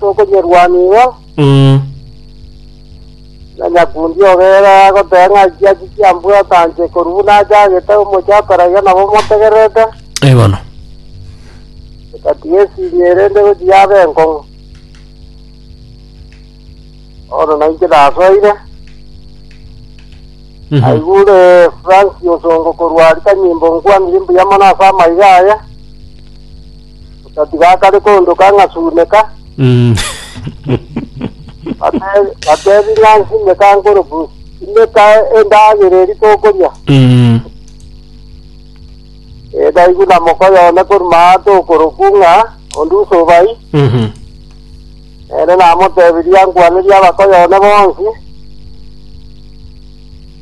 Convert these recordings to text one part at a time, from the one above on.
Tokonyerwanigwa, Mm. na nyakundi obeire agoteba ng'a eki achi kiambwate anche korwa buna achagete omochie ataraiga nabo motegererete, Ee bono. egatiga esiria erende gochia yabe enkong'u. Bono nainche nasoire, Mhm. naigure Fransi osongo korwa Aritanyimbo nkwanire mbuya mono ase amaiga aye, Otatiga akare koondoka ng'a suneka, Mm. bate- bateebie ng'a nsimeka nkorubu, simeka endagera eri tokoria. Mm. Edaigwe na mokoyo one koruma aa tokorubu ng'a onde usobai, Mhm. ere namoteebirie ankwanerie abakoyo one bonsi.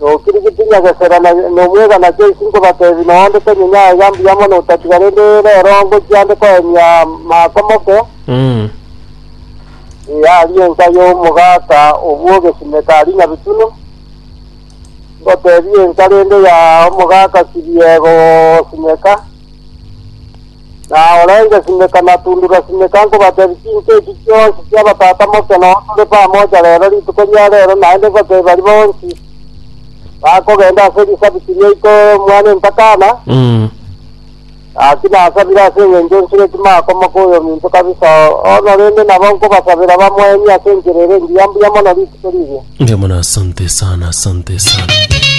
Nokirigi tinya gosera na nomwega naki ais nkobatebi noonde tenye nyaye iga mbuya mono otatiga rende rero ngochia nde koemia maako moke Mm. Ee, aria enka y'omogaka obwo ogesimeka aria nyabitunu ngotebia enka rende ya omogaka sibiego ogosimeka na orenge simeka na tundura simeka nkobatebia chinse echi chionsi chi'abatata moke noo tore pamoja rero rituko ria rero naende bake bari bonsi bakogenda ase risabiti ria iko mwana entakana Mm. Gaki nasabire ase eng'encho nsire timakomoka oyo minto kabisa ono rende nabo nkobasabera bamwenie ase enchera ere engiya mbuya mono rituko riria Ndio maana asante sana, asante sana.